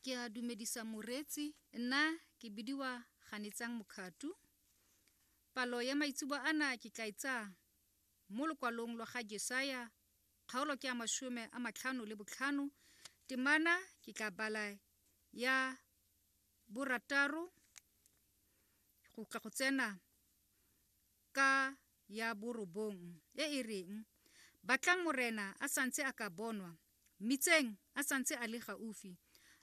ke a dumedisa moreetsi nna ke bidiwa ganetsang mokgatu palo ya maitsebo ana ke tla itsa e mo lokwalong lwa ga jesaya kgaolo ke ya masome a matlhano le botlhano temana ke tla bala ya borataro go tla go tsena ka ya borobong e e reng Batlang Morena a santse a ka bonwa, Mmitseng a santse a le gaufi,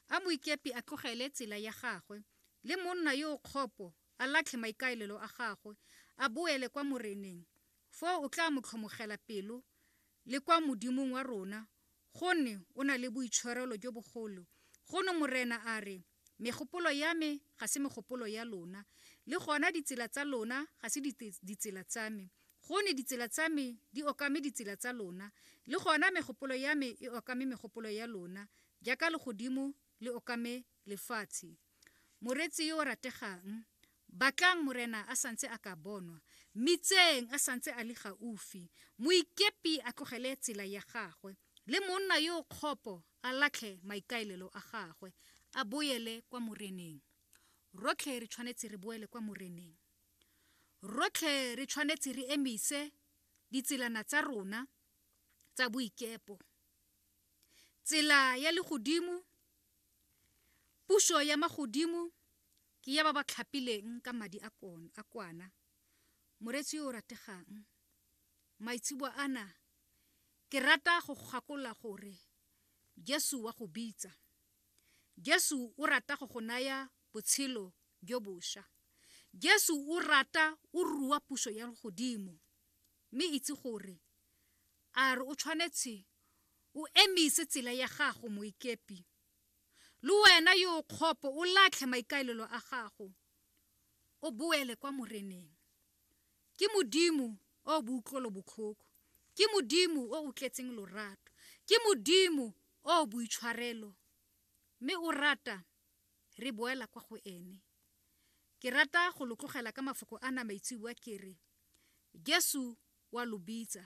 a moikepi a tlogele tsela ya gagwe, le monna yo o kgopo a latlhe maikaelelo a gagwe, a boele kwa Moreneng, foo o tla mo tlhomogela pelo, le kwa Modimong wa rona, gonne o na le boitshwarelo jo bogolo. Gono Morena a re, Megopolo ya me ga se megopolo ya lona, le gona ditsela tsa lona ga se ditsela tsa me. Gone ditsela tsa me di okame ditsela tsa lona, le gona megopolo ya me e okame megopolo ya lona, jaaka legodimo le okame lefatshe. Moreetsi yo o rategang, batlang Morena a santse a ka bonwa, mmitseng a santse a le gaufi, moikepi a tlogele tsela ya gagwe. le monna yo o kgopo a latlhe maikaelelo a gagwe a boele kwa moreneng rotlhe re tshwanetse re boele kwa moreneng rotlhe re tshwanetse re emise ditselana tsa rona tsa boikepo tsela ya legodimo puso ya magodimo ke ya ba ba tlhapileng ka madi a kwana moretsi yo o rategang Maitseboa ana, ke rata go gakolola gore Jesu wa go bitsa. Jesu o rata go go naya botshelo jo bosha. Jesu o rata o rua puso ya godimo mme itse gore a re o tshwanetse o emise tsela ya gago moikepi le wena yo o kgopo o latlhe maikaelelo a gago o boele kwa moreneng Ke Modimo o boutlwelobotlhoko. Ke Modimo o o tletseng lorato. Ke Modimo o boitshwarelo. Mme o rata re boela kwa go ene. Ke rata go lo tlogela ka mafoko a na maitseboa ke re, Jesu wa lo bitsa.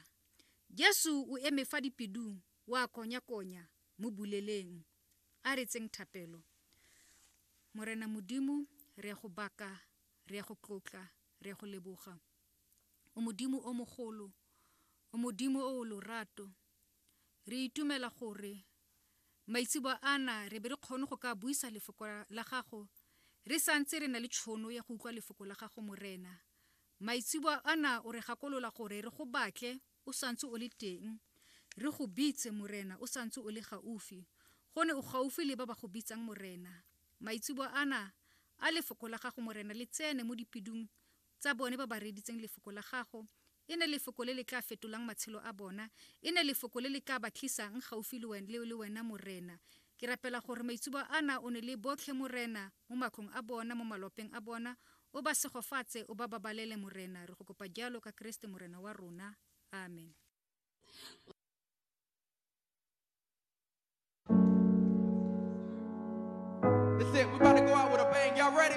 Jesu o eme fa dipedung wa konya-konya mo buleleng. A re tseng thapelo. Morena Modimo, re ya go baka Re a go tlotla, re a go leboga. O Modimo o mogolo, o Modimo o o lorato. Re itumela gore maitsebo ana re be re kgone go ka buisa lefoko la gago re santse re na le tšhono ya go utlwa lefoko la gago morena maitsebo ana o re gakolola gore re go batle o santse o le teng, re go bitse, Morena, o santse o le gaufi. Gone o gaufi le ba ba go bitsang, Morena. Maitseboa ana a Lefoko la Gago, Morena, le tsene mo dipidung tsa bone ba ba reeditseng Lefoko la Gago. E ne Lefoko le le tla fetolang matshelo a bona. E ne Lefoko le le tla ba tlisang gaufi le Wena, Morena. Ke rapela gore maitsuba ana o ne le botlhe, Morena, mo matlong a bona, mo malopeng a bona, o ba segofatse, o ba babalele, Morena. Re go kopa jalo ka Keresete Morena wa rona. Amen. That's it. We're about to go out with a bang. Y'all ready?